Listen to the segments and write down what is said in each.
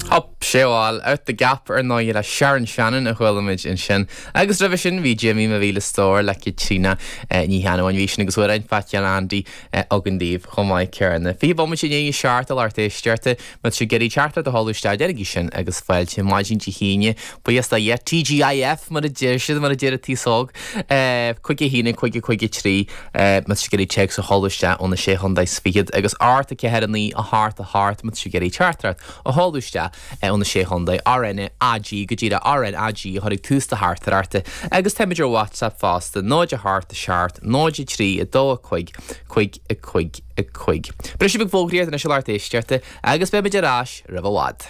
Hup! Sea bhuel, Out the Gap ar ndóigh le Sharon Shannon a chuala muid ansin. Agus roimhe sin bhí Jimmy Mo Mhíle Stór le Caitríona Ní Cheannabháin. Bhí sin agus Amhrán Phaitín Andy againn daoibh chomh maith céanna. Fiche bomaite i ndiaidh a seacht, a lucht éisteachta. Má tá sibh ag iarraidh teachtaireacht a sheoladh isteach déanaigí sin agus fáilte maidin Dé hAoine. Buíochas do Dhia TGIF, mar a deir siad, mar a deir an t-aos óg. Cúig a haon, cúig, a cúig a trí, más ag iarraidh téacs a sheoladh isteach ó na sé chontae 's fichead, agus a hocht 4 9 a hocht, a hocht, más ag iarraidh teachtaireacht a sheoladh isteach ó na sé chontae. RN AG, Go díreach, RN AG a chur ag tús do theachtaireachta. Agus táimid ar WhatsApp fosta, 0 a hocht, a seacht, 0 3 2 5 5 5 5. Briseadh beag fógraíochta anois a lucht éisteachta, agus beimid ar ais roimh i bhfad.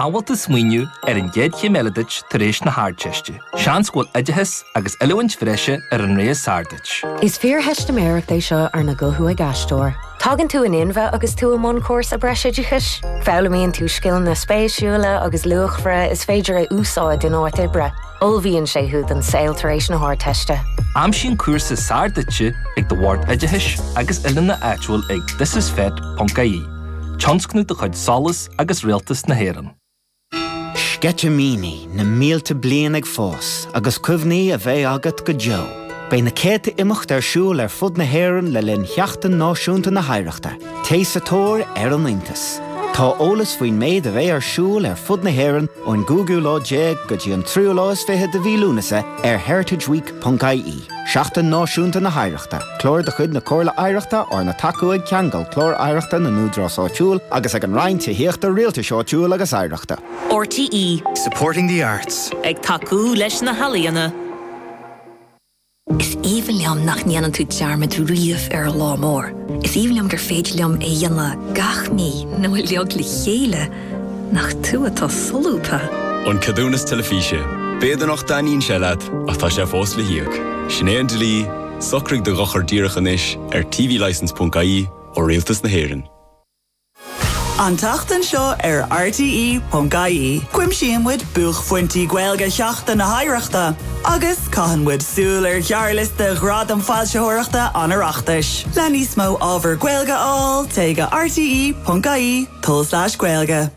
An bhfuil tú ag smaoineamh ar an gcéad chéim eile duit tar éis na hArdteiste. Seans go bhfuil oideachas agus oiliúint bhreise ar an rogha is fearr duit. Is fíortheistiméireacht é seo arna guthú ag aisteoir. Tagann tú in inmhe agus tú i mbun cúrsa breisoideachais. Foghlaimíonn tú scileanna spéisiúla agus luachmhara is féidir a úsáid in áit oibre. Ullmhaíonn sé thú don saol tar éis na hArdteiste. Aimsigh an cúrsa is fearr duit ag do Bhord Oideachais agus Oiliúna áitiúil ag thisisfet.ie, tionscnamh de chuid SOLAS agus Rialtas na hÉireann. Sceitimíní na mílte bliain ag fás agus cuimhní a bheidh agat go deo. Beidh na céadta imeacht ar siúl ar fud na hÉireann le linn Sheachtain Náisiúnta na hOidhreachta. Téigh sa tóir ar an iontas! Tá eolas faoin méid a bheidh ar siúl ar fud na hÉireann ón gcúigiú lá déag go dtí an tríú lá is fiche de mhí Lúnasa ar heritageweek.ie. Seachtain Náisiúnta na hOidhreachta, Clár de chuid na Comhairle Oidhreachta arna tacú ag Ceangal, Clár Oidhreachta na nÚdarás Áitiúil agus ag an Roinn Tithíochta, Rialtais Áitiúil agus Oidhreachta. RTÉ. Supporting the arts. Ag tacú leis na healaíona. Is aoibhinn liom nach ndéanann tú dearmad riamh ar an lá mór. Is aoibhinn liom gur féidir liom é a dhéanamh gach mí nó uilig le chéile, nach tú atá solúbtha? An Ceadúnas Teilifíse, B'fhéidir nach dtaitníonn sé leat, ach tá sé fós le híoc. Sin é an dlí, socraigh do dhochar díreach anois ar tvlicence.ie ó Rialtas na hÉireann. An tseachtain seo ar rte.ie, cuimsíonn muid buaicphointí Gaeilge Sheachtain na hOidhreachta agus caitheann muid súil ar ghearrliosta Ghradaim Foilsitheoireachta an Oireachtais. Le níos mó ábhar Gaeilge a fháil, téigh go rte.ie, tulslais gaeilge.